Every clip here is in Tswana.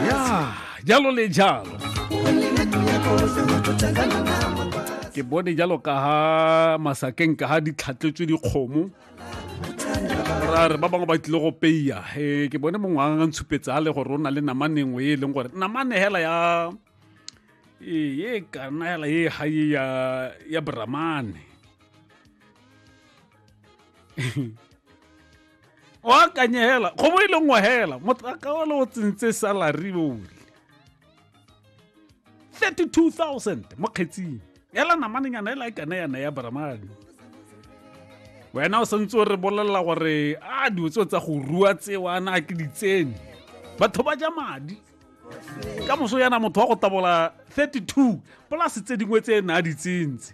ya jalo le jalo ke bone jalo ka ha masakeng ka ha di tlhatletswe dikgomo ra re ba bangwe ba tlile go peya e ke bone mongwe a ntshupetse a le gore o na le namane nngwe e e leng gore namane hela ya e kana hela e gae ya ya bramane o akanye hela kgobo e le nngwe hela motlaka wa le o tsentse salary ole 32000 mo kgetsing ela namananyana e la ikane yana ya bramane wena o santse o re bolelela gore a dilo tseo tsa go rua tsewa na ke ditsene batho ba ja madi ka moso yana motho wa go tabola 32 polase tse dingwe tse e ne a di tsentse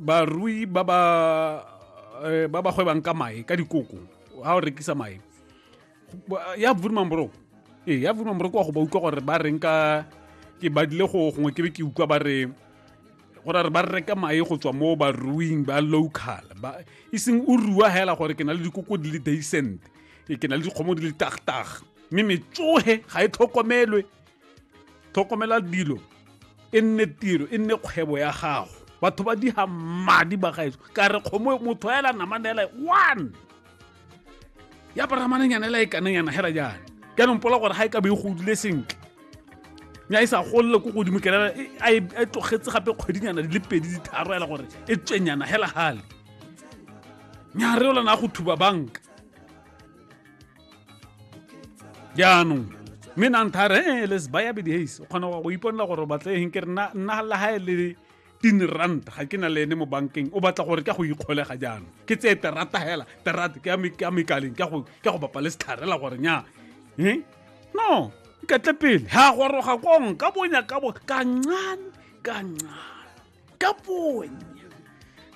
barui ba ba eh, ba ba gwebang ka mae ka dikoko ga o rekisa mae ya vurman bro ee ya vurman bro kwa go ba utlwa gore ba reng ka ke badile go gongwe ke be ke utlwa ba re gore re ba reka mae go tswa mo baruing ba local ba e seng o rua hela gore ke na le dikoko di le decent ke na le dikgomo di le tagtag mme metsoge ga e tlhokomelwe tlhokomela dilo e nne tiro e nne kgwebo ya gago batho ba diga madi ba gaetso ka re kgomo motho ela namane ela one ya paramanenyana ela e kanenyana hela jana jaanong pola gore ga e ka be e godile sentle nya e sa golole ko godimo kelela e, e, e tlogetse gape kgwedinyana di le pedi ditharo ela gore e tswenyana hela gale nya re olana go thuba banka jaanong mme nanthare e eh, les baya bedi hays o kgona go iponela gore o batle eng ke re nna la gae le tin rand ga ke na le ene mo bankeng o batla gore ka go ikgolega jaanong ke tseye terata hela terata ke a mekaleng ke go bapa le setlharela gore nya eh? no iketle pele ha goroga kong ka bonya ka bo ka ncane ka ncane ka ponya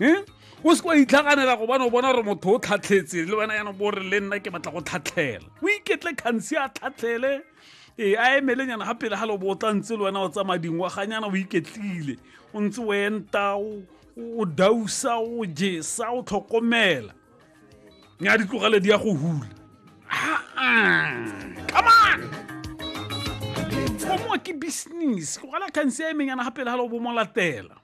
um o se kwa itlhaganela go bana o bona gore motho o tlhatlhetse le wena yana bo re le nna ke batla go tlhatlhela o iketle kgansi a tlhatlhele ee a emelenyana ga pele ga le bo o tla ntse le wena o tsamaya dingwaganyana o iketlile o ntse o enta o dausa o jesa o tlhokomela nya di tlogele di ya go hula come on fomo ke business go gala khanse ya emeng yana gapele ga le bo mo latela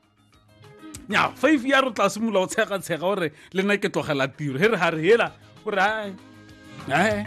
nya five ya re tla simolola go tshega tshega gore le nna ke tlogela tiro he re ga re hela o re ae ae